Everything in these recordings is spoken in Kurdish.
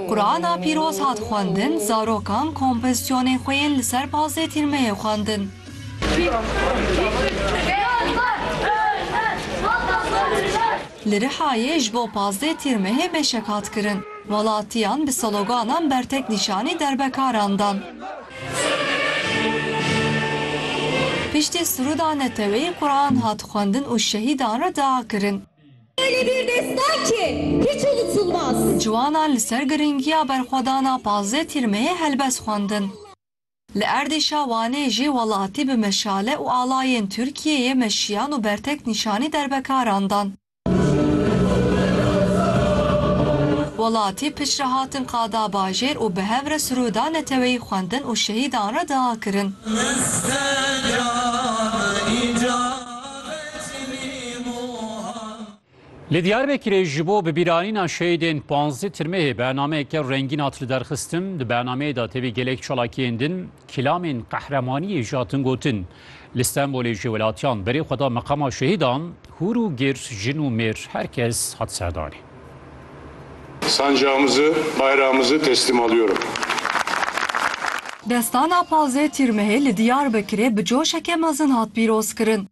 Qurana pîroz hat xwendin, zarokan kompozisyonên xwe yên li ser pazdeh tîrmeyê xwendin. Li Rihayê ji bo pazdeh tîrmehê meşek hat kirin. Welatiyan bi sloganan bertek nîşanî derbekaran dan. Piştî siruda neteweyî Quran hat xwendin û şehîdan re dia kirin. Ciwanan li ser girîngiya berxwedana pazdeh tîrmehê helbest xwendin. Li Erdîşa Wanê jî welatî bi meşale û alayên Tirkiyeyê meşiyan û bertek nîşanî derbekaran dan. Welatî piç re hatin qada bajêr û bi hev re siroda neteweyî xwendin û şehîdan re dua kirin. Li Diyarbekirê ji bo bibîranîna şehîdên panzdeh tirmehê bernameyeke rengîn hat liderxistin. Di bernameyê de tevî gelek çalakiyên din kîlamên qehremaniyê jî hatin gotin. Li Stenbolê jî welatiyan berê xwe da meqama şehîdan, hûr û gir, jin û mêr her kes hat serdanê. Sancağımızı, bayrağımızı teslim alıyorum. Destana Pazdeh Tîrmehê li Diyarbekirê bi coşeke mezin hat pîrozkirin.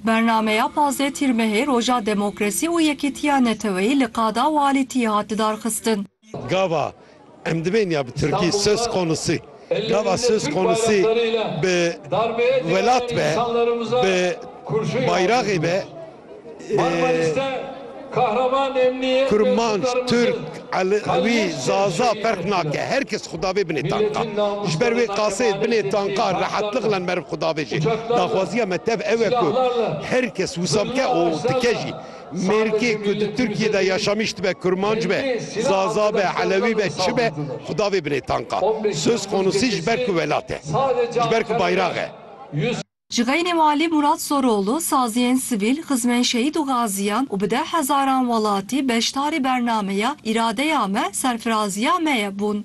Bernameya Pazdeh Tîrmehê Roja Demokrasî û Yekîtiya Neteweyî li Qada Walîtiyê hat lidarxistin. Gava Em divên ya bi tirkî söz konusu gava söz konusu bi welat be bi bayraxê be kurmanc, tirk, elewî, zaza ferq nake her kes xwe davê binê tanka. Ji ber wê qasê binê tanka rehetliq len meriv xwe davê jê. Daxwaziya me tev ew e ku her kes wisa bike û dike jî. Mêrikê ku di Tirkiyê de yaşamîş dibe kurmanc be, zaza be, elewî be, çi be xwe da vê binê tanka. Söz konusî ji ber ku welat e. Ji ber ku bayrax e. Ji xeynê Walî Murat Soroğlu, saziyên sivîl, xizmên şehîd û gaziyan û bi deh hezaran welatî beşdarî bernameya Îradeya me, serfiraziya me ye bûn.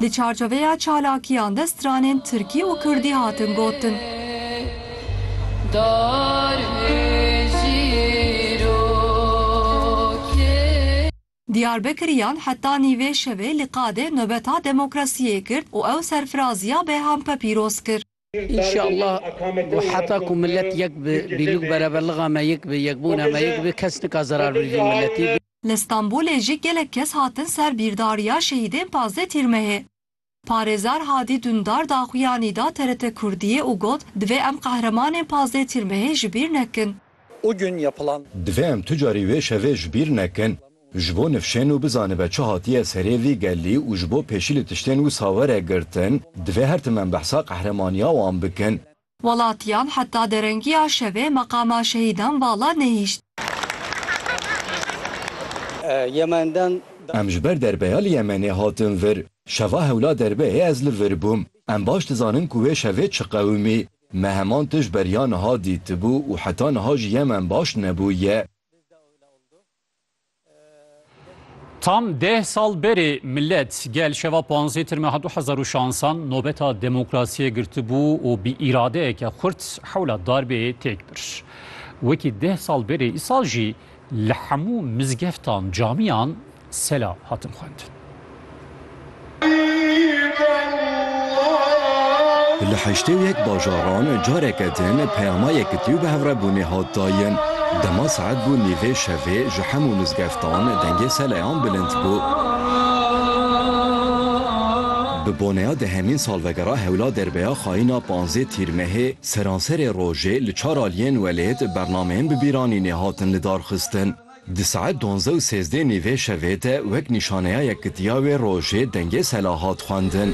Di çarçoveya çalakiyan de stranên tirkî û kurdî hatin gotin. Diyarbekiriyan heta nîvê şevê li Qadê nobeta demokrasiyê kir û ew serfiraziya Beyhan Pepîroz kir. Înşallah ku heta ku milet yek bi, bîlûk bereverliga me yek bi, yekbûna me yek bi, kes nika zerar bi vî miletî. Li Stenbolê jî gelek kes hatin ser bîrdariya şehîdên pazdeh Tîrmehê. Parêzer Hadî Dundar daxuyanî da TRT Kurdiyê û got, Divê em qehremanên pazdeh Tîrmehê ji bîr nekin. O gün yapılan. Divê em tu carî wê şevê ji bîr nekin. Ji bo nifşên û bizanibe çi hatiye serê vî gelî û ji bo pêşî li tiştên wisa were girtin, divê her tim em behsa qehremaniya wan bikin. Welatiyam heta derengiya şevê meqama şehîdan vala nehîşt. Yemenden. Em ji ber derbeya li Yemenê hatin vir. Şeva hewla derbeyê ez li vir bûm. Em baş dizanin ku wê şevê çi qewimî, Me heman tişt beriya niha dîtibû û heta niha ji Yemen baş nebûye. Tam deh sal berê milet gel şeva panzdeh tirmeh du hezar û şansan nobeta demokrasiyê girtibû û bi îradeyeke xurt hewla darbê têk bir. Wekî deh sal berê îsal jî li hemû mizgeftan, camiyan Sela hatin xwendin. Li heştê û yek bajaran careke din peyama yekitî û bihevrebûnê hat dayin. Dema saet bû nîvê şevê ji hemû mizgeftan dengê seleyan bilind bû. Bi boneya dehemîn salvegera hewla derbeya xayîna panzdeh Tîrmehê seranserê rojê li çar aliyên welêt bernameyên bi bîranînê hatin lidarxistin. Di saet duanzdeh û sêzdeh nê vê şevê de wek nîşaneyayek gidiya wê rojê dengê sela hat xwendin.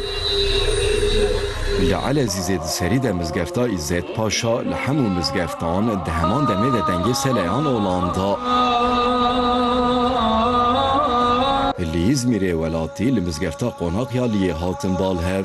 Li Elezîzê di serî de mizgefta Îzzet Paşa li hemû mizgeftan di heman demê de dengê seleyan olan da. Li Îzmîrê welatî li mizgefta Qonak ya Liyê hatin bal hev.